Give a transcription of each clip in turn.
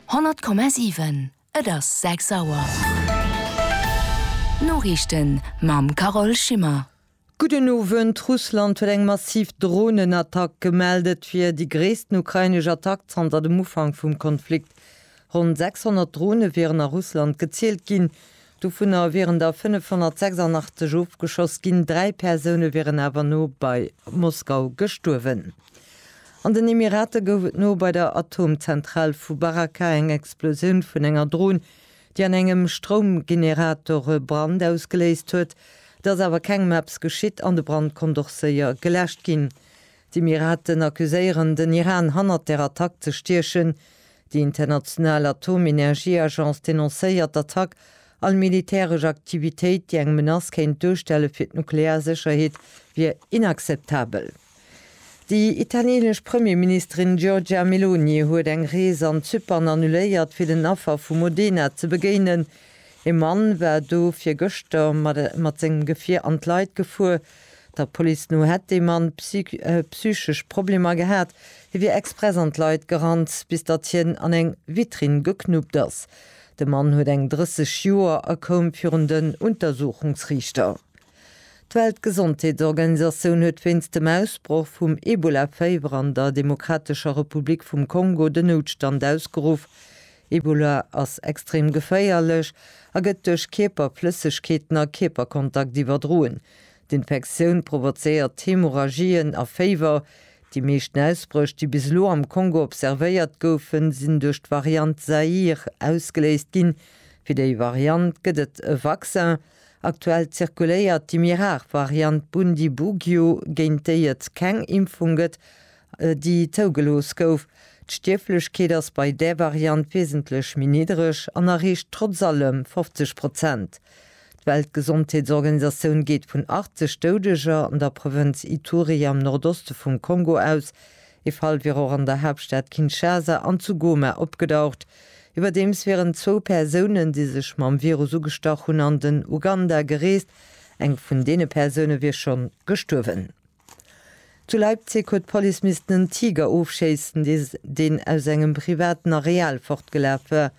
100,7 Et ass 6 Auer. D'Noriichten mam Carole Schimmer. Gudden Owend. Russland huet eng massiv Dronenattack gemellt. Et wier déi gréissten ukrainesch Attack zanter dem Ufank vum Konflikt. Ronn 600 Drone wieren a Russland gezielt ginn. Dovunner wieren der 586 ofgeschoss ginn, dräi Persoune wieren awer no bei Moskau gestuerwen. An den Emirate gouf et no bei der Atomzentral vu Baraka eng Explosioun vun enger Dron, déi an engem Stroumgenerator e Brand ausgeléist huet. Et ass awer kengem eppes geschitt an de Brand konnt och séier geläscht ginn. D'Emiraten accuséieren den Iran hannert der Attack ze stiechen. Déi international Atomenergieagence denoncéiert d'Attack, all militäresch Aktivitéit, déi eng Menace kéint duerstelle fir d'nuklear Sécherheet, wier inakzeptabel. Déi italieenesch Premierministerin Giorgia Meloni huet eng Rees an Zypern annuléiert, fir den Affer vu Modena ze begéinen. Ee Mann war do fir gëschter mat sengem Gefier an d'Leit gefuer. Der Police no hätt de Mann psychesch Problemer gehat. Hie wier express an d'Leit gerannt, bis datt hien an eng Vitrinn geknuppt ass. De Mann huet eng 30 Joer a koum virun den Untersuchungsriichter. D'Weltgesondheetsorganisatioun huet wéinst dem Ausbroch vum Ebola-Féiwer an der Demokratescher Republik vum Kongo den Noutstand ausgeruff. Ebola ass extrem geféierlech a gëtt duerch Kierperflëssegkeeten a Kierperkontakt iwwerdroen. D'Infektioun provozéiert Hämorrhagien a Féiwer. Déi meeschten Ausbréch, déi bis elo am Kongo observéiert goufen, sinn duerch d'Variant Zaïre ausgeléist ginn. Fir déi Variant gëtt et e Vaccin. Aktuell zirkuléiert déi méi rar Variant Bundibugyo, géint déi et keng Impfung gëtt déi zougelooss gouf. D'Stierflechkeet ass bei där Variant wesentlech méi niddreg an erreecht trotz allem 50 Prozent. D'Weltgesondheetsorganisatioun geet vun 80 Doudeger an der Provënz Ituri am Nordoste vum Kongo aus. Ee Fall wier och an der Haaptstad Kinshasa an zu Goma opgedaucht. Iwwerdeems wieren zwou Persounen, déi sech mam Virus ugestach hunn, an den Uganda gereest. Eng vun deene Persoune wier schonn gestuerwen. Zu Leipzig huet d'Police missten en Tiger ofschéissen, deen aus engem privaten Areal fortgelaf war.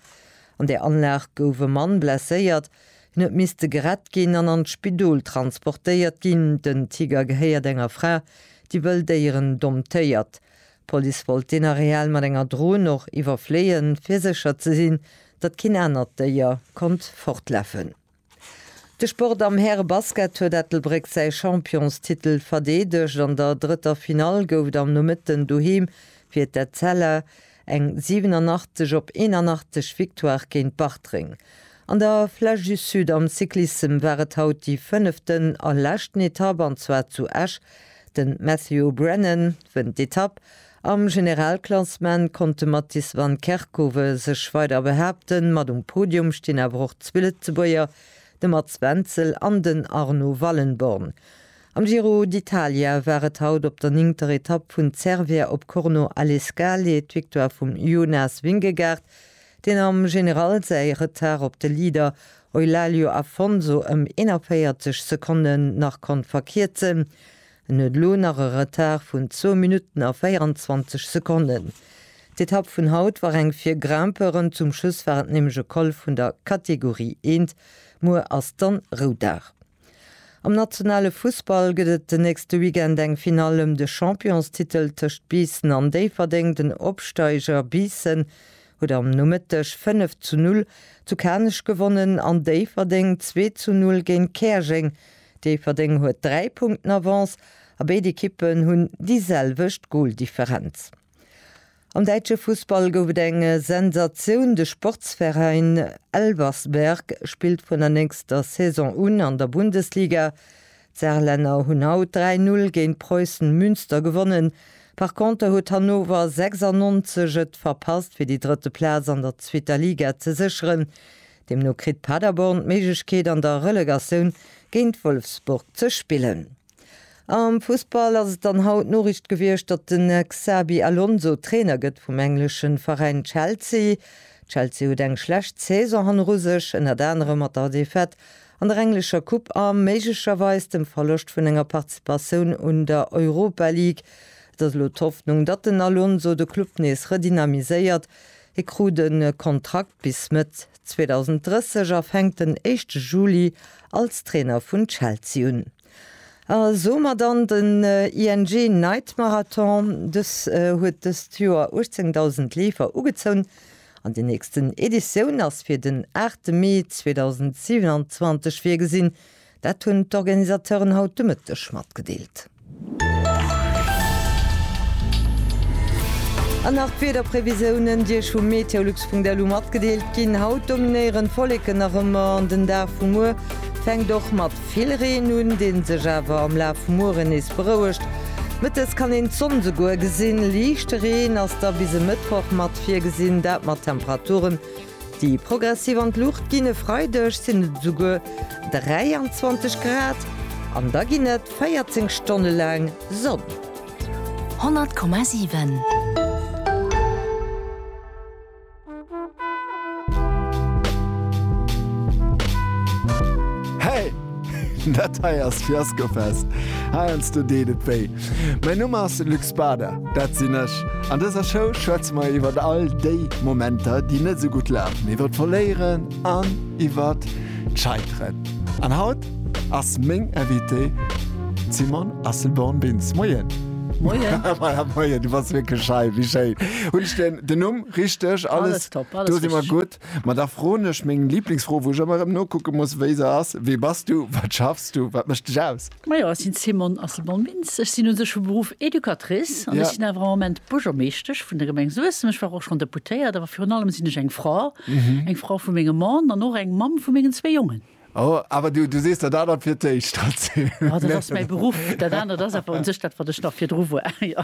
An där Anlag gouf e Mann blesséiert. Hien huet misste gerett ginn an an d'Spidol transportéiert ginn. Den Tiger gehéiert enger Fra, déi wëll Déieren domptéiert. D'Police wollt deen Areal mat enger Dron och iwwerfléien, fir sécher ze sinn, datt keen anert Déier konnt fortlafen. De Sport am Härebasket huet Ettelbréck säi Championstitel verdeedegt. An der drëtter Finall gouf et am Nomëtten doheem fir d'Etzella eng 87 op 81 Victoire géint Bartreng. An der Flèche du Sud am Cyclissem war et haut déi fënneften a leschten Etapp, an zwar zu Esch. De Matthew O'Brennan wënnt d'Etapp Am Generalklassement konnt de Mattis van Kerckhove sech weider behaapten, mat um Podium stinn awer och zwee Lëtzebuerger, de Mats Wenzel an den Arno Wallenborn. Am Giro d'Italia war et haut op der néngter Etapp vun Cervia op Corno alle Scale d'Victoire vum Jonas Vingegaard, deen am General säi Retard op de Leader Eulaglio Afonso ëm 41 Sekonne nach konnt verkierzen. En huet elo nach e Retard vun zwou Minutten a 24 Sekonnen. D'Etapp vun haut war eng fir Grimpeuren, zum Schluss war et nämlech e Col vun der Kategorie I. Muer ass dann Roudag. Am nationale Fussball gëtt et den nächste Weekend eng Finall ëm de Championstitel tëscht Biissen an Déifferdeng. Den Opsteiger Biissen huet am Nomëtteg 5 zu 0 zu Kanech gewonnen an Déifferdeng 2 zu 0 géint Käerjeng Déifferdeng huet 3 Punkten Avance a béid Ekippen hunn déi selwecht Goldifferenz. Am däitsche Fussball gouf et eng Sensatioun, De Sportsveräin Elversberg spillt vun der nächster Saison un an der Bundesliga. D'Saarlänner hunn haut 3-0 géint Preußen Münster gewonnen. Par Konter huet Hannover 96 et verpasst fir déi drëtte Plaz an der zweeter Liga ze sécheren. Deemno kritt Paderborn d'Méiglechkeet an der Relegatioun géint Wolfsburg ze spillen. Am Fussball ass et dann haut d'Noriicht gewiescht, datt den Xabi Alonso Trainer gëtt vum engleschen Veräin Chelsea. Chelsea huet eng schlecht Saison hanneru sech, ënnert anerem mat der Defaite an der englescher Coupe a méiglecherweis dem Verloscht vun enger Participatioun un der Europa League. Et ass elo d'Hoffnung, datt den Alonso de Club nees redynamiséiert, Hie krut e Kontrakt bis Mëtt 2030 a fänkt den éischte Juli als Trainer vun Chelsea un. A somat an den ING Night Marathon. Dës huet dëst Joer 18.000 Leefer ugezoun an déi nächsten Editioun ass fir den 8 Mee 2027 virgesinn. Dat hunn d'Organisateuren haut de Mëtteg matgedeelt. An nach d'Wiederprevisiounen, déi Iech vu meteolux.lu matgedeelt ginn. Haut dominéieren d'Wolleken nach ëmmer an den Dag vu muer fänkt och mat vill Reen un, dee sech awer am Laf vum Mueren nees berouegt. Mëttes kann een d'Sonn souguer gesinn. Liichte Reen ass da bis e Mëttwoch mat virgesinn, dat mat Temperaturen Déi progressiv an d'Luucht ginn. E Freideg sinn et esouguer 23 Grad an da ginn et 14 Stonne laang Sonn. 100,7. Dat hei ass Fiaskofest, heiansdo deet et wéi. Mäin Numm ass Luc Spader, dat sinn ech. An dëser Show schwätze mer iwwert all déi Momenter, déi net esou gutt lafen, iwwert d'Verléieren an iwwert d'Scheiteren. An haut ass meng Invitée d'Simone Asselborn-Bintz. Moien! Moien! Voilà, moien, du bass wierklech hei, wéi schéin. Hunn ech den Numm richteg? Alles top, alles richteg. Do si mer gutt. Ma da froen ech meng Lieblingsfro, wou ech ëmmer erëm nokucke muss, wéi se ass, Wie bass du? Wat schaffs du? Wat mécht dech aus? Majo, ech sinn Simone Asselborn Bintz. Ech sinn un sech vu Beruff Educatrice an ech sinn awer am Moment Buergermeeschtesch vun der Gemeng Suessem. Ech war och schonn Deputéiert, awer virun allem sinn ech eng Fra, eng Fra vu mengem Mann an och eng Mamm vu mengen zwee Jongen. Oh, awer du, du sees dat anert fir d'éischt, Tracy. Jo, dat ass mäi Beruff. Dat anert ass awer un sech dat, wat ech nach virdru war, jo.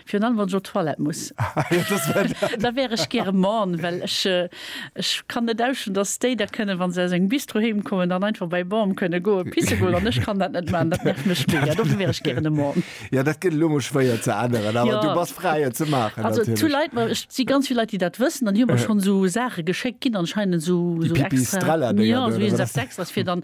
Virun allem wann ech op d'Toilette muss, da wär ech gäre Mann, well ech ech kann net ausstinn, dass déi da kënnen, wa se aus engem Bistro heem kommen, dann einfach bei Bam kënne goe pisse goen an ech kann dat net maachen. Dat nervt mech mega. Dofir wär ech gären e Mann. Jo, dat gëtt elo emol schwéier ze änneren, awer du bass fräi et ze maachen natierlech. Also zu Leit, ma ech si ganz vill Leit, déi dat wëssen an déi hu mer schonn esou Saache geschéckt ginn anscheinend, esou extra, jo esou eppes extras fir dann.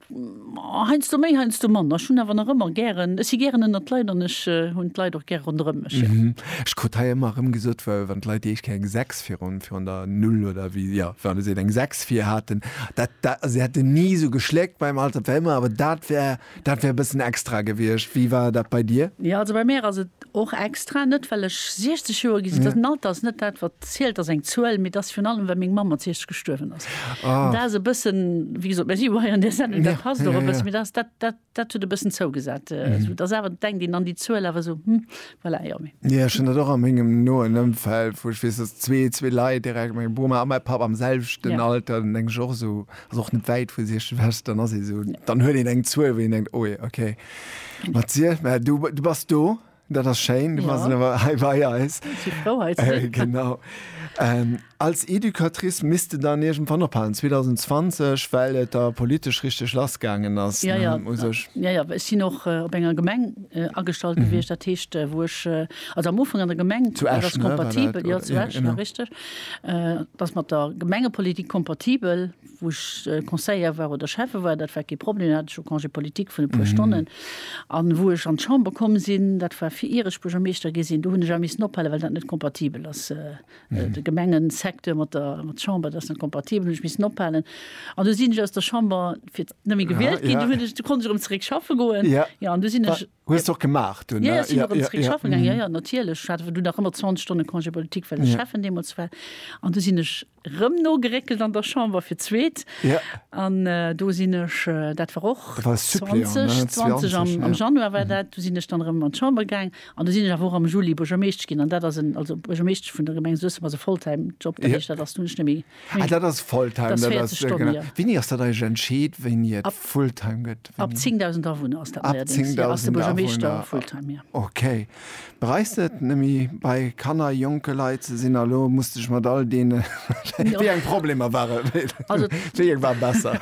Heiansdo méi, heiansdo manner. Ech hunn awer nach ëmmer gären, ech si gären ënnert d'Leit an ech hunn d'Leit och gär ronderëm mech, jo. Ech krut hei ëmmer erëm gesot, wa wann d'Leit déi éischt Kéier eng Sechs virun virun der Null oder wéi, jo, wa se eng Sechs vir haten, dat dat, also se hätten ni esou geschléckt beim Alt, dat wär ëmmer, awer dat wär dat wär e bëssen extra gewiescht. Wéi war dat bei dir? Jo, also bei mär ass et Och extra, net well ech 60 Joer gi sinn, den Alter ass net dat wat zielt, ass eng Zuel, mee et ass virun allem well meng Mamm mat 60 gestuerwen ass. An dat ass e bëssen, wéi gesot, mer si jo hei an där Sendung, dat passt och e bëssen, mee dat, dat, dat huet e bëssen zougesat. Et ass awer, denkt een an déi Zuel awer esou, hm, voilà, jo, mee. Jo, ech hunn dat och a mengem noen Ëmfeld, wou ech weess, dass zwee, zwee Leit direkt, meng Boma a mäi Papp am selwechten Alter, dann denk ech och esou, ass och net wäit vu 60, dann ass ee esou, dann huet een eng Zuel, wou een denkt, oh je, okay. Mathieu, mä du, du bass do, dat ass schéin, du ja. bass awer hei bei eis. Äh, genau. Ähm, als Educatrice misste dann irgendwann ophalen 2020, well et da politesch richtig lassgaangen ass. Ja, ja, ja, ja, ech sinn och äh, op enger Gemeng äh, agestalt mhm. gewicht, dat heescht äh, woch äh, also am Ufang an der Gemeng zu Esch, kompatibel ne, ja, zu Esch, ja, richtig. Äh, dats mat der Gemengepolitik kompatibel wou ech Conseiller war oder Schäffe war, dat war kee Problem, do hat ech jo Congé politique vun e puer Stonnen. A wou ech an d'Chamber komm sinn, dat war fir ier ech Buergermeeschter gi sinn, do hunn ech awer missen ophale well dat net kompatibel ass. De Gemengesecteur mat der Chamber, dat ass net kompatibel, hunn ech missen ophalen. An du sinn ech aus der Chamber fir net méi gewielt ginn, du hunn ech, du konnt ech erëm zeréck schaffe goen. Jo, an du sinn ech. Hues de och gemaach dunn? Jo, jo, ech sinn erëm zeréck schaffe gaangen. Jo, jo, natierlech. Ech hat awer dunn nach ëmmer 20 Stonne Congé politique, well ech Schäffen deemools war. An du sinn ech Rëm nogeréckelt an der Chamber fir d'zweet. An do sinn ech, dat war och 2020, am Januar war dat, do sinn ech dann erëm an d'Chamber gaang. An do sinn ech awer och am Juli Buergermeeschtesch ginn. An dat ass en, also Buergermeeschtesch vun der Gemeng Suessem ass e Volltime-Job. Dat heescht, dat ass dunn net méi, dat ass 40 Stonnen, jo. Wéini ass dat eigentlech entscheet, wéini et Fulltime gëtt? Ab 10.000 Awunner ass dat neierdéngs, jo, ass de Buergermeeschter Fulltime, jo. Okay. Bereist et nemme bei Kanner, jonke Leit ze sinn? A lo musste ech mat all deene wéi eng Problemer ware wéi eng war besser?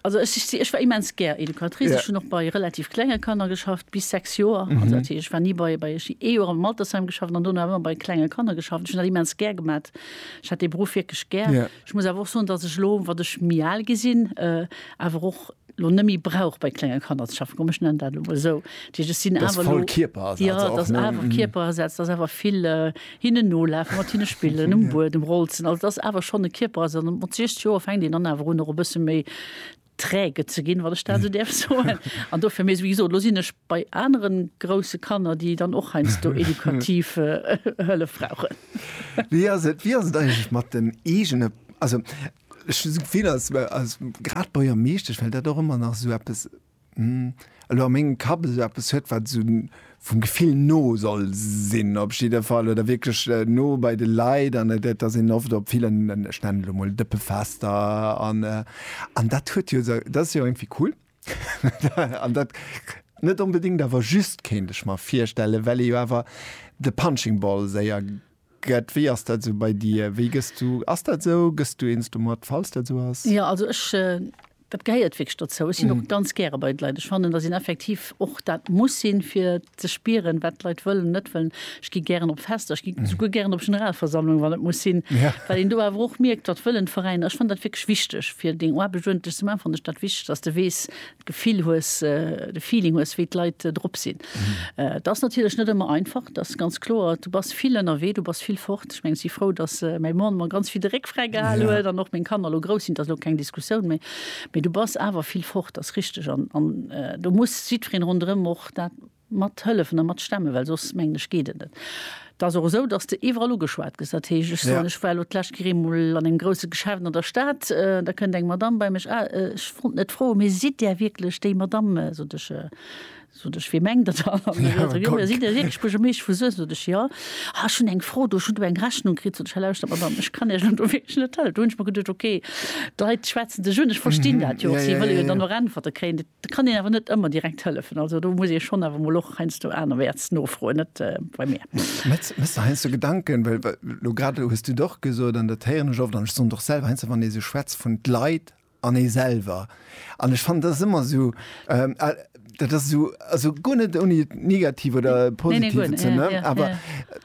Also ech si ech war immens gär Educatrice. Ech hunn och bei relativ klenge Kanner geschafft bis 6 Joer. Also dat heescht ech war ni bei bei ech ee Joer am Altersheim geschafft an dono awer ëmmer bei klenge Kanner geschafft. Ech hunn dat immens gär gemat. Ech hat dee Beruff wierklech gär. Ech muss awer och soen, datt ech elo, wat ech méi al gi sinn, awer och, elo net méi brauch bei klenge Kanner ze schaffen, komm ech nennen dat elo mol esou, dat heescht ech sinn awer elo. Dass voll Kierperasaz och, ne? Jo, dass awer Kierperasaz, dass awer vill hinnen nolafen, mat hinne spillen, um Buedem rolzen, also dass awer schonn e Kierperasaz an mat 60 Joer fänkt een dann awer un och e bësse méi träge ze ginn, wann ech dat esou däerf soen, an dofir, mee wéi gesot, elo sinn ech bei anere grousse Kanner, déi dann och heiansdo edukativ Hëllef brauchen. Wéi ass et, wéi ass et eigentlech mat den eegene, also Ech hu d'Gefill, als, als grad Buergermeeschtesch, well dat och ëmmer nach esou eppes, hm, elo a mengem Kapp esou eppes huet, wat esou vum Gefill no soll sinn op jidde Fall oder wierklech no bei de Leit an et, et ass een oft op villen, ech nennen et elo mol Dëppefester an, an dat huet jo esou, dat ass jo irgendwie cool an dat net onbedéngt awer just, kéint ech mer virstellen, well ee jo awer de Punching Ball séier. Gëtt, wéi ass dat sou bei dir? Wéi gëss du, ass dat sou, gëss du eens domat, falls dat sou ass? Jo, also ech, dat gehéiert wierklech dozou. Ech sinn och ganz gäre bei de Leit. Ech fannen, dass een effektiv och dat muss sinn, fir ze spieren, wat d'Leit wëllen an net wëllen. Ech gi gären op Fester, ech gi souguer gären op Generalversammlungen, wann et muss sinn, well een do awer och mierkt, wat wëllen d'Veräiner. Ech fannen dat wierklech wichteg, fir deng Aarbecht uerdentlech ze maachen, fannen ech dat wichteg, dass de weess, D'Gefill hues, de Feeling hues, wéi d'Leit drop sinn. Et ass natierlech net ëmmer einfach, dat ass ganz kloer. Du bass vill ënnerwee, du bass vill fort. Ech mengen, ech si frou, dass mäi Mann mer ganz vill de Réck fräi gehal huet an och meng Kanner elo grouss sinn. Dat ass elo keng Diskussioun méi. Mee du bass awer vill fort, dat ass richteg. An do muss jiddwereen ronderëm och dat. Mat hëllefen a mat stemme, well soss, mengen ech, geet et net. Et ass och esou, datt s de iwwerall ugeschwat gëss. Dat heescht, ech soen, ech war elo d'lescht Kéier eemol an engem grousse Geschäft an der Stad, da kënnt eng Madamm bei mech, Ah, ech wollt net froen, mee sidd Där wierklech déi Madamm, sot ech, sot ech, wee mengt Der dann? An da seet se, Jo, sidd Dir wierklech Buergermeesch vu Suessem? Sot ech, Jo. Ah, ech hunn eng Fro do, ech hunn do eng Rechnung kritt. Sot ech, Hei lauschtert, Madamm, ech kann Iech elo do wierklech net hëllefen. Do hunn ech mer geduecht, Okay, d'Leit schwätzen dech un, ech verstinn dat jo och, si wëlle jo dann och Äntwerte kréien. Da kann een awer net ëmmer direkt hëllefen. Also do muss ee schonn awer emol och heiansdo anerwäerts nofroen, net bei mir. Metz, Méchs der heiansdo Gedanken, well elo grad elo hues du et och gesot an dat héieren ech oft an ech soen et och selwer, heiansdo wann ee sou schwätzt vun d'Leit an ee selwer an ech fannen dat ass ëmmer esou, dat ass esou, also guer net ouni et negativ oder positiv ze, awer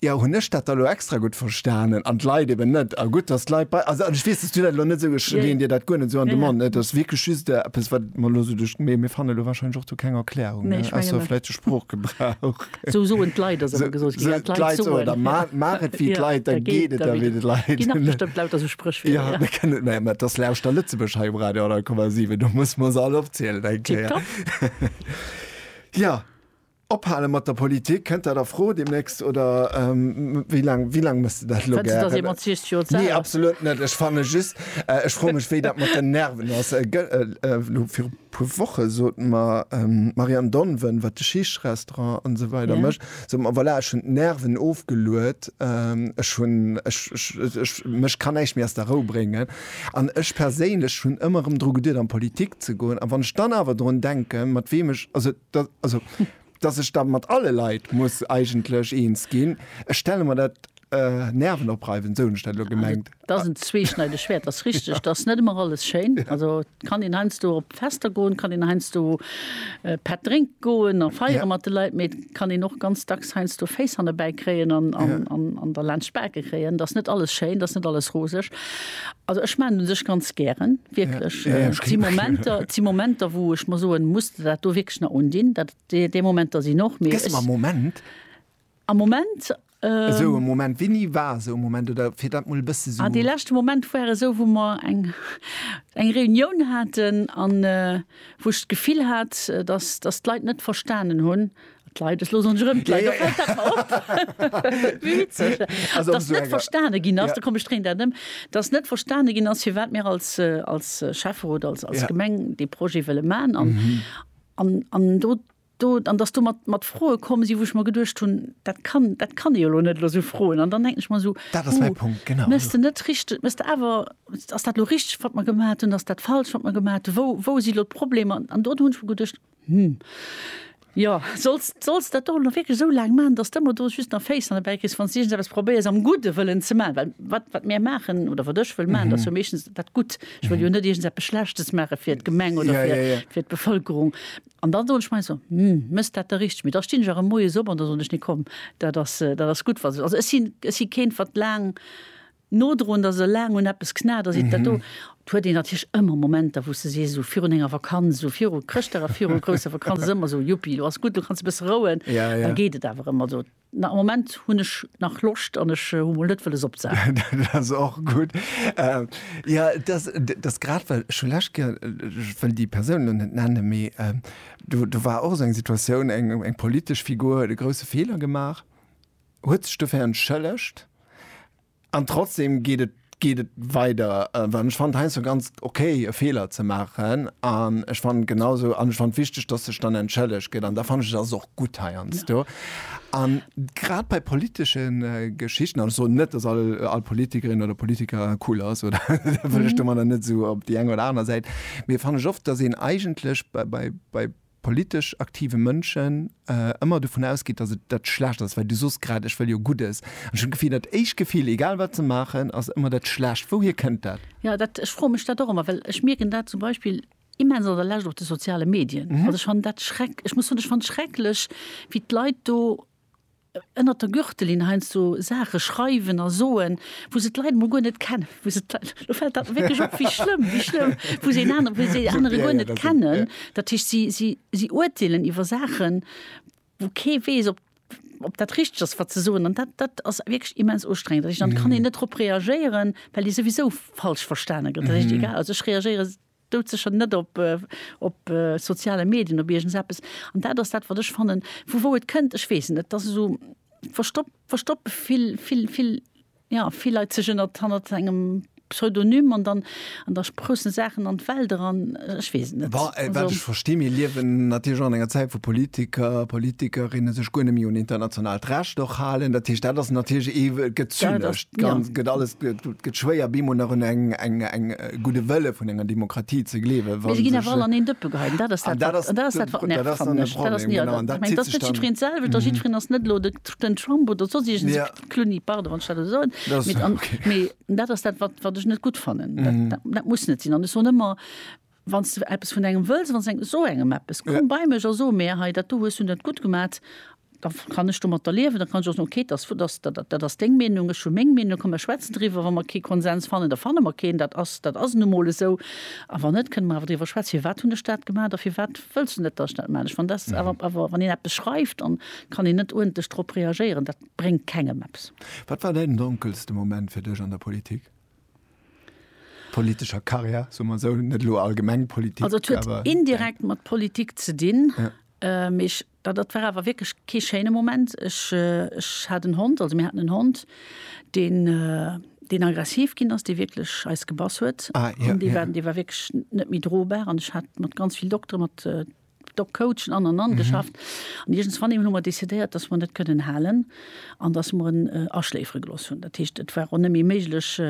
Jo, hunn ech dat da lo extra gutt verstanen an d'Leit eben net? A gutt, datt d'Leit bei, also, an ech weess, datt du dat elo net esou, ech leeën dir dat guer net esou an de Mond, et ass wierklech just eppes, wat mer elo esou duerch de, mee mir fannen elo warscheinlech och do keng Erklärung, ne, ausser vläicht de Sproochgebrauch. Esou soen d'Leit, ass ëmmer gesot ginn, dat d'Leit soen. Oder maach et wéi d'Leit, da geet et ewéi d'Leit. Ginn nach bestëmmt lauter esou Spréchwierder, jo. Jo, mä et ass Lauschter Lëtzebuerg hei um Radio 100,7, do musse mer se all opzielen, eng Kéier. Tipptopp. Jo. Ophale mat der Politik, kënnt dat a Fro deemnächst oder wéi laang, wéi laang muss de dat elo gären? Fënns de, datt ee mat 60 Joer z'al ass? Nee, absolut net. Ech fanne just, ech froe mech, wéi dat mat den Nerven ass. Elo viru puer Woche sot mer d'Marianne Donven, wat de Schicht-Restaurant an esou weider mécht, sot mer, voilà, ech hunn d'Nerven ofgeluet, ech hunn, ech, mech kann näischt méi aus der Rou bréngen. An ech perséinlech hunn ëmmer erëm dru geduet an d'Politik ze goen. A wann ech dann awer drun denken, mat weem ech, also, Dat, also, dass ech da mat alle Leit muss eigentlech eens ginn, ech stelle mer dat äh, nervenopreiwend, esou hunn ech dat elo gemengt. Dat ass en zweeschneideg Schwäert, dat ass richteg. Dat ass net ëmmer alles schéin. Also et kann een heiansdo op Fester goen, et kann een heiansdo äh, Pätt drénke goen a feiere Ja. mat de Leit, mee et kann een och ganz dacks heiansdo Féiss hannebäi kréien an, an, an, an derlaanscht d'Bake kréien. Dat ass net alles schéin, dat ass net alles roseg. Also ech maachen un sech ganz gären. Wierklech, et si Momenter, et si Momenter, wou ech mer soen, muss de dat do wierklech nach undinn? Dat, dee, dee Momenter sinn och, mee Gëss ech. mer e Moment, Am Moment, esou e Moment, wéini war esou e Moment, oder fir dat mol e bësse sou. ah, dee leschte Moment war esou, wou mer eng, eng Reunioun haten an wou ech d'Gefill hat, dass, dass d'Leit net verstanen hunn, Leit es losen rëm net verstane ginn ass, da kom streng dat ëm, dats net verstane ginn ass, fir wat mir als als Schäffer oder als als Gemeng dee Projet wëlle man an an an do do an dass do mat mat froe kommen si, wou ech mer geduecht hunn, dat kann dat kann ee jo lo net lo sou froen. An dann denken ech mer esou, hu mes de net richteg mes de awer ass dat lo richteg wat mer gemat hunn, ass dat falsch wat mer gemat hunn, wou wou si lo d'Problemer? An do hunn ech mer geduecht, Hm. Jo, solls, solls dat do nach wierklech esou laang maachen, dass de ëmmer do just nach Féisser dobäi kriss, wann s du iergendeppes probéiers am gudde Wëllen ze maachen. Well wat, wat mir maachen oder wat ech wëll maachen, dat ass jo meeschtens dat Gutt. Ech wëll jo net iergendeppes Schlechtes maache fir d'Gemeng oder Ja, fir, ja, ja. fir d'Bevëlkerung. An da soen ech mei so, Hm, mëss dat da richteg? Mee da stinn ech erëm moies op an da soen ech, Nee, komm, dat ass, dat ass gutt, wat ech. Also ech sinn, ech si keen, wat laang nodroend ass, esou laang un eppes knat ass, iwt dat do, et huet een natierlech ëmmer Momenter, wou s de sees, esou virun enger Vakanz, esou viru Chrëschtdag a viru grousser Vakanz, ass ëmmer esou, Juppi, lo ass gutt, lo kanns de e bësse rouen. Da geet et awer ëmmer esou, na, am Moment hunn ech nach Loscht an ech hu mol net wëlles opzehaalen. Dat ass och gutt. Jo, et ass, et ass grad, well ech hu d'lescht Kéier, ech wëll déi Persoun elo net nennen, mee do war och esou eng Situatioun, eng politesch Figur huet e grousse Feeler gemaach, huet sech dofir entschëllegt an trotzdem geet et geet et weider well ech fand heiansdo ganz ok e Feeler ze maachen an ech fand genausou an ech fand wichteg dass sech dann entschëllegt gëtt an da fand ech et ass och gutt heiansdo an grad bei politesche Geschichten an ech soen net dass all all Politikerin oder Politiker cool ass oder dat wëll ech domadder net esou op déi eng oder aner Säit mee fand ech oft dass een eigentlech bei bei bei politesch aktive Mënschen ëmmer dovun ausgeet, datt et dat Schlecht ass, well du sos grad, ech wëll jo Guddes. An ech hunn d'Gefill, dat éischt Gefill, egal wat se maachen, ass ëmmer dat Schlecht. Wouhier kënnt dat? Jo, dat, ech froe mech dat och ëmmer, well ech mierken dat zum Beispill immens an der Lescht op de soziale Medien. Also ech fannen dat schreck, ech muss soen, ech fannen et schrecklech, wéi d'Leit do ënnert der Gürtellinn heiansdo Saache schreiwen a soen, wou se d'Leit emol guer net kennen, wou se d'Leit, lo fält dat mer wierklech op, wéi schlëmm, wéi schlëmm, wou se een anere, wou se een anere guer net kennen. Dat heescht, si, si, si urteelen iwwer Saachen, wou kee weess, ob, ob dat richteg ass, wat se soen. An dat, dat ass wierklech immens ustrengend. Dat heescht, dann kann een net drop reagéieren, well ee souwisou falsch verstane gëtt. Dat heescht, egal, also ech reagéiere. Doudsécher net op, op soziale Medien, op iergends eppes. An dat ass dat, wat ech fannen, vu wou et kënnt, ech weess et net. Et ass esou verstoppt, verstoppt vill, vill, vill, jo, vill Leit sech ënnert, hannert engem Pseudonym an dann, an da sproussen Saachen an d'Welt eran. Ech weess et net. Bon, wat ech verstinn, mir liewen natierlech och an enger Zäit, wou Politiker, Politikerinne sech guer net méi un internationaalt Recht och halen. Dat heescht, dat ass natierlech ee, gëtt zynesch, gëtt alles, gëtt schwéier, bemol nach un eng, eng, eng, gudde Wëlle vun enger Demokratie ze gleewen. Mee se ginn awer all an een Dëppe geheit. Dat ass dat, wat nervt, fannen ech. Dat ass net jiddwereen d'selwecht a jiddwereen ass net elo den Trump oder soss iergendee Clooney, pardon, wann ech dat esou soen. Mee dat ass dat, wat ech net gutt fannen. Dat muss net sinn. An ech soen ëmmer, Wann s de eppes vun engem wëlls, wann s de esou engem eppes, komm bei mech a so mär, hei dat do hues du net gutt gemat. Da kann ech domatter liewen, da kann ech och soen, okay, dat ass deng Meenung, ech hu meng Meenung, komm mer schwätzen driwwer, wa mer kee Konsens fannen, da fanne mer keen, dat ass nu emol esou. A wann net, kënne mer awer driwwer schwätzen, firwat hunn ech dat gemaach a firwat wëlls du net, datt ech dat maachen. Wann een eppes schreift, dann kann een net uerdentlech drop reagéieren, dat bréngt kengem eppes. Wat war däin donkelste Moment fir dech an der Politik, politescher Karriär, soe mer esou, net elo allgemeng Politik? Also et huet indirekt mat Politik ze dinn, mee ech Da dat war awer wierklech kee schéine Moment. Ech, ech hat en Hond, also mir haten en Hond, deen, deen aggressiv ginn ass, dee wierklech eis gebass huet. Ah, ja, an dee war, dee war wierklech net méi drobar. An ech hat mat ganz vill Doktere, mat Dog-Coachen an an an geschafft. An iergendswann hu mer decidéiert, dass mer net kënnen halen an dass mer en aschléifere gelooss hunn. Dat heescht, et war och net méi méiglech,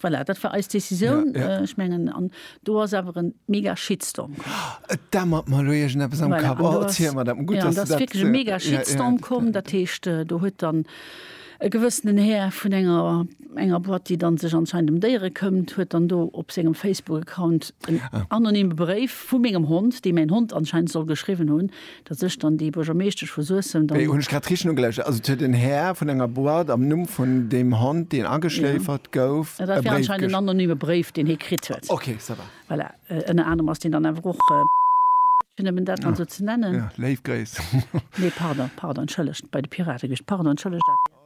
Voilà, dat war eis Décisioun. Ja, ja. Ech mengen, an do ass awer en mega Shitstorm komm. Et dämmert mer elo iergendeppes am Kapp. Voilà, an do Oh, ass, erziel mer dat mol. Gutt, ja, an dass do du ass dat. wierklech e mega Ja, ja, Shitstorm dat, komm. Dat heescht, äh, do huet dann e gewëssenen Här vun enger, enger Boîte, déi dann sech anscheinend ëm Déiere këmmt, huet dann do op sengem Facebook-Account en Ah. anonyme Bréif vu mengem Hond, dee mäin Hond anscheinend soll geschriwwen hunn, Dat sech dann déi Buergermeeschtesch vu Suessem dann. Hunn ech grad richteg nogeluschert. Also et huet en Här vun enger Boîte am Numm vun deem Hond, deen ageschléifert gouf, e Bréif. Dat war anscheinend en anonyme Bréif, deen hie kritt huet. Ok, ça va. Voilà. Ënner anerem ass deen dann awer och gewiescht, fir nëmmen dat mol esou ze nennen. Léif Gréiss. Nee, pardon, pardon, entschëllegt. Bei de Pirate gewiescht. Pardon, entschëllegt, Adrian.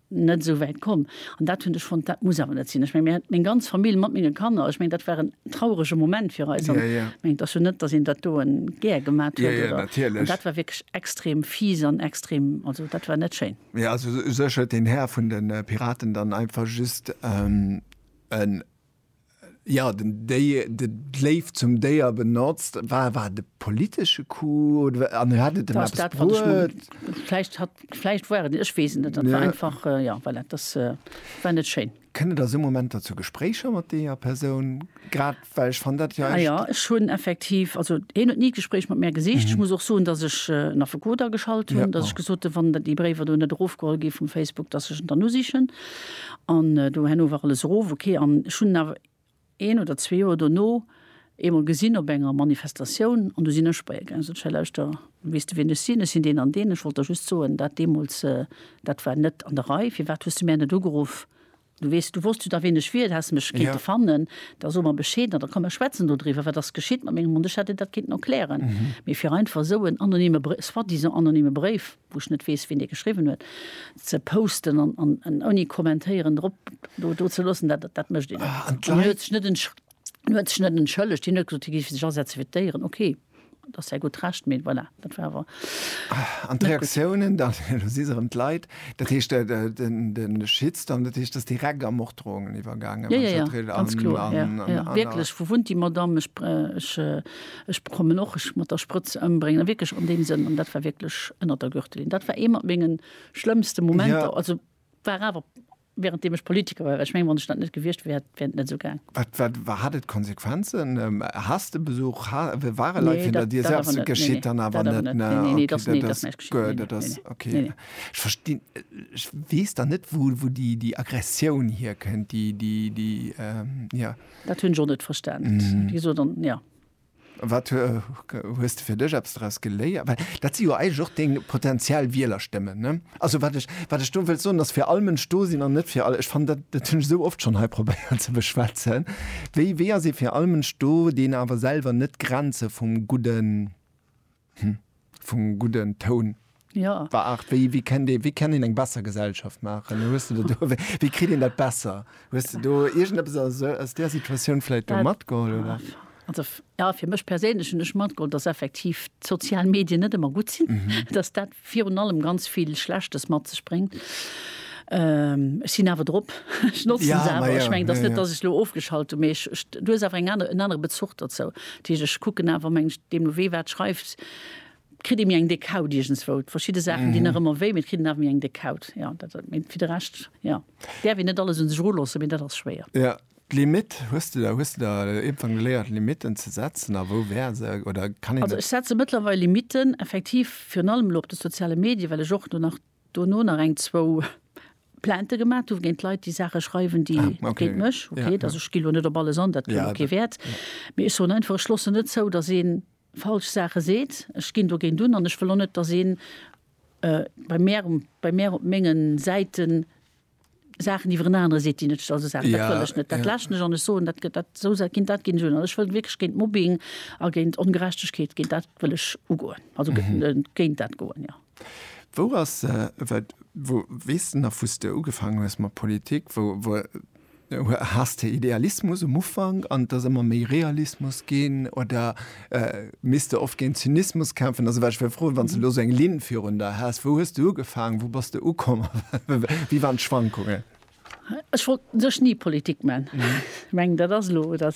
net esou wäit komm. An dat hunn ech fonnt, dat muss awer net sinn. Ech menge meng ganz Famill mat menge Kanner, ech meng dat war en traurege Moment fir eis. An ech mengen, et ass jo net, datt een dat do gär gemat huet, oder? An dat war wierklech extrem fies an extrem, also dat war net schéin. Mee also u sech huet den Här vun de Piraten dann einfach just en Ja, den Déi de d'Léift zum Déier benotzt. War war et e politesche Coup oder an hat et ëm eppes bruet? Vläicht hat vläicht war et, ech weess et net. Dat war einfach, ja voilà, dass war net schéin. Kënne der esou Momenter zu Gespréicher mat deeër Persoun? Grad well ech fann dat jo echt. Jo, ech hunn effektiv, also hien huet ni d'Gespréich mat mär gesicht. Ech muss och soen, dass ech en Affekot ageschalt hunn, dass ech gesot hunn, wann déi Bréiwer do net erofgeholl gi vum Facebook, dass ech en dann usichen. An do herno war alles erof, ok. An ech hunn en awer een oder zwee Joer dono eemol gesinn op enger Manifestatioun an do sinn ech bei e gaangen. Sot ech, Hei lauschter, weess de wien ech sinn? Ech sinn deen an deen, ech wollt der just soen, dat deemools, dat war net an der Rei. Firwat hues de mär net ugeruff? Du weess, du wosst jo da wien ech wier, du häss mech kéinte fannen. Da so mer Bescheed an da komm mer schwätzen dodriwwer, wat ass geschitt mat mengem Hond? Ech hätt dir dat kéinten erklären, mee fir einfach esou en anonyme Bréif, soi-disant anonyme Bréif, wou ech net weess wien dee geschriwwen huet, ze posten an, an, an ouni kommentéieren drop do, do ze loossen, dat, dat mécht een net. An d'Leit. Hien huet sech net entsch, hien huet sech net entschëllegt, hien huet gesot, hie géif sech asetze fir d'Déieren, okay, dat ass säi gutt Recht, mee voilà, dat war awer. An d'Reaktiounen dann, elo si se erëm d'Leit, dat heescht de, de, den, de Shitstorm, dat heescht, ass direkt a Morddroungen iwwergaangen, Ja, wann ja, ech ja, dat ri, ganz an, kloer, ja, an, an, ja, an, a. wierklech, wou wunnt déi Madame, ech, ech, Ech bekommen och, ech mat der Sprëtz ëmbréngen, a wierklech an deem Sënn, an dat war wierklech ënnert der Gürtellinn. Dat war ee mat menge schlëmmste Momenter. Ja. Also war awer während deem ech Politiker war, well ech mengen, wann ech dat net gewiescht wär, hätt wär et net esou gaang. Wat, wat war, hat et Konsequenzen? Has de Besuch, ha, ware Leit Nee, hannert dat, dir? dat awer Selbst, net. Nee, geschitt nee, dann awer dat awer net, net. ne? Nee, nee, nee, Okay, dat, nee, dat ass ass näischt geschitt. guer, Nee, nee, dat nee, ass nee. okay. Nee, nee. Ech verstinn, ech weess dann net, wou, wou déi, déi Aggressioun hierkënnt, déi, déi, déi, ähm, ja. Dat hunn ech och net verstanen. Mm -hmm. Wieso dann, ja. Wat hues du fir dech abs daraus geléiert? Well dat si jo eig och deng potenziell Wieler stëmmen ne? Also wat ech, wat ech do wëll soen, ass fir all Mënsch do sinn an net fir all. Ech fan dat dat hunn ech sou oft schonn hei probéiert ze beschwätzen. Wéi wéi ass ee fir all Mënsch do, deen awer selwer net Grenze vum Gudden. Hm, vum gudden Toun. Jo. War Art, wéi, wéi kennt ee, wéi kennt een eng besser Gesellschaft maachen? Hues de do, do, wéi, wéi kritt een dat besser? Hues de do iergendeppes aus esou, aus där Situatioun vläit do Dat- matgeholl, oder? Ah, Also, f- ja, fir mech perséinlech hunn ech matgeholl, dass effektiv d'sozial Medien net ëmmer gutt sinn, dass dat virun allem ganz vill Schlechtes mat sech bréngt. Ech sinn awer drop, ech notzen se awer. Ech mengen, et ass net, datt ech elo ofgeschalt hunn, mee ech, ech, du hues awer eng aner, en anere Bezuch dozou. Dat heescht, ech kucken awer, meng ech, deemno wee wat schreift, kritt ee méi eng déck Haut iergendswou. Verschidde Saachen dinn nach ëmmer wéi, mee et kritt een awer méi eng déck Haut. Jo, dat, mee fir de Rescht, jo, däerf een net alles un sech eruloossen, mee dat ass schwéier. D'Limitt, hues de der, hues de der iergendwann geléiert Limitten ze setzen a wou wär se, oder kann een Also dat? ech setze mëttlerweil Limitten, effektiv, virun allem elo op de soziale Medie, well ech och do nach, dono nach eng, zwou Plaintë gemat hu géint Leit, déi Saache schreiwen, déi Ah, okay. géint mech, Ja, okay, also ja. ech ginn elo net op alles an, dat huet Ja, elo kee dat, Wäert, ja. mee ech soen einfach, ech loossen net zou, datt ee falsch Saache seet, ech ginn dogéint un an ech wëll och net, datt een bei mär, bei mär op mengen Säiten Saachen iwwer en anere seet, déi net scho se saachen, dat wëll ech net. Dat läschen ech an ech soen, dat gëtt dat esou sa ginn, dat ginn ech un. An ech wëll wierklech géint Mobbing a géint Ongerechtegkeet géint dat wëll ech ugoen, also géint dat goen, jo. Wou ass, wou weess de nach, wou s de ugefaangen hues mat Politik, wou, wou, Has de Idealismus um Ufank an et ass ëmmer méi Realismus ginn oder misst de oft géint Zynismus kämpfen? Also wat ech wéll froen, wann s de elo esou eng Linn virun der häss, wou hues de ugefaangen, wou bass de ukomm a wéi waren d'Schwankungen? Ech wollt u sech ni Politik man. Ech mengen dat ass elo, dat.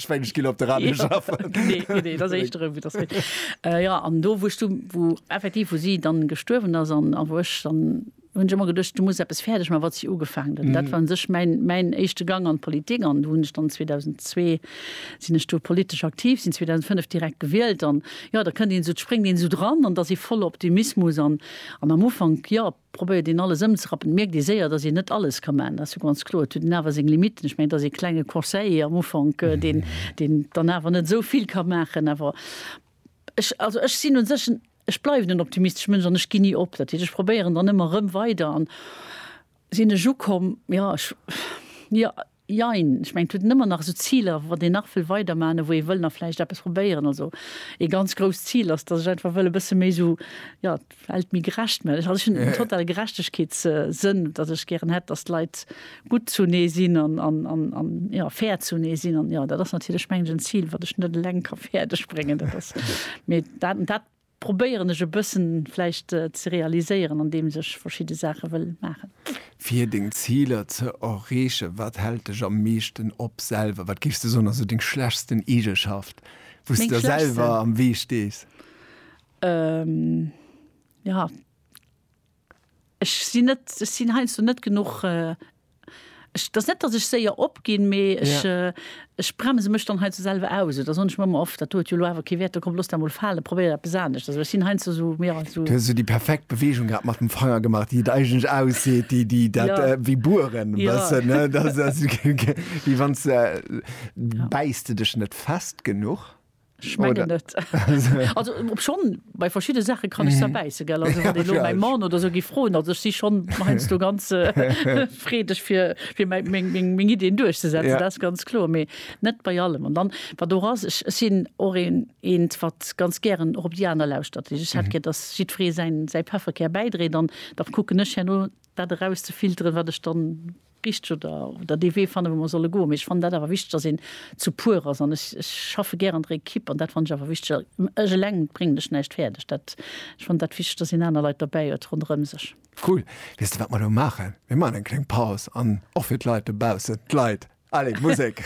Spéidesch ginn op de Radio schaffen. Nee, nee, nee, dat ass éischter ewéi dat Méint. Jo, an do, wou ech du, wou effektiv, wou si dann gestuerwen ass an a wou ech dann, hunn ech ëmmer geduecht, du muss eppes fäerdeg man, wat si ugefaangen huet. Dat war un sech mäin, mäin éischte Gang an d'Politik an do hunn ech dann 2002 sinn ech do politesch aktiv, sinn 2005 direkt gewielt an, jo, da kënnt een esou, spréngt een esou dran an et ass ee voller Optimismus an, an am Ufank, jo, probéiert een alles ëmzerappen, mierkt ee séier, datt een net alles ka maachen, dat ass jo ganz kloer. Et huet en awer seng Limitten. Ech mengen, et ass ee klenge Conseiller am Ufank, deen, deen dann awer net esou vill ka maachen. Awer ech, also ech sinn un sech en, ech bleiwen en optimistesche Mënsch an ech ginn ni op. Dat heescht, ech probéieren dann ëmmer erëm weider an sinn ech ukomm, jo, ech, jo. Jein, ech mengen et huet een ëmmer nach esou Ziler, wat een nach wëll weiderman a wou ee wëll nach vläicht eppes probéieren. Also ee ganz grousst Zil ass, datt ech einfach wëll e bësse méi esou, jo, d'Welt méi gerecht man. Also ech hunn en totale Gerechtegkeetssënn, datt ech gären hätt, datt d'Leit gutt zunee sinn an, an, jo, fair zunee sinn. An jo, dat ass natierlech, mengen ech, en Zil, wat ech net eleng ka fäerdeg bréngen. Dat ass, mee dat, dat. Probéieren ech e bëssen vläicht ze realiséieren an deems ech verschidde Saache wëll maachen. Fir deng Ziler ze erreechen, wat hält dech am meeschten op selwer? Wat géifs de soen ass esou deng schlechtsten Eegeschaft, wou s de der selwer am Wee stees? Meng schlechtsten? Jo, Ech sinn net, ech sinn heiansdo net genuch, ech, et ass net, datt ech séier opginn, mee ech, ech bremse mech dann heiansdo selwer aus. Oder soen ech mer ëmmer oft, dat do huet jo elo awer kee Wäert, da komm looss dat emol falen, probéier eppes anescht. Also ech sinn heiansdo esou, jo, esou. Du hues esou déi perfekt Beweegung grad mat dem Fanger gemaach, déi et eigentlech ausseet, déi, déi dat, wéi bueren e bëssen, ne? Dat ass, wéi wann s de, bäiss de dech net fest genuch? Schmengen net. Also op schonn bei verschidde Saache kann ech zerbäisse gell. Also wann elo mäi Mann oder sou gi froen, also ech si schonn heiansdo ganz freedeg fir fir mäi meng meng meng Ideen duerchzesetzen, dat ass ganz kloer, mee net bei allem. An dann wat och ass, ech ech sinn och een eent wat ganz gären och op déi aner lauschtert. Ech hätt gär, datt jiddweree säin säi Pefferkär bäidréit an da kucken ech herno dat erauszefilteren, wat ech dann richteg oder dee Wee fannen, wou mer solle goen. Mee ech fannen dat awer wichteg, datt een zu puer ass. An ech schaffe gär an der Ekipp an dat fannen ech awer wichteg. Ech eleng bréngen lech näischt fäerdeg. Dat, ech fannen dat wichteg, datt een aner Leit derbäi huet ronderëm sech. Cool. Weess de, wat mer elo maachen? Mir maachen eng kleng Paus an och fir d'Leit dobaussen, d'Leit, allez, Musek!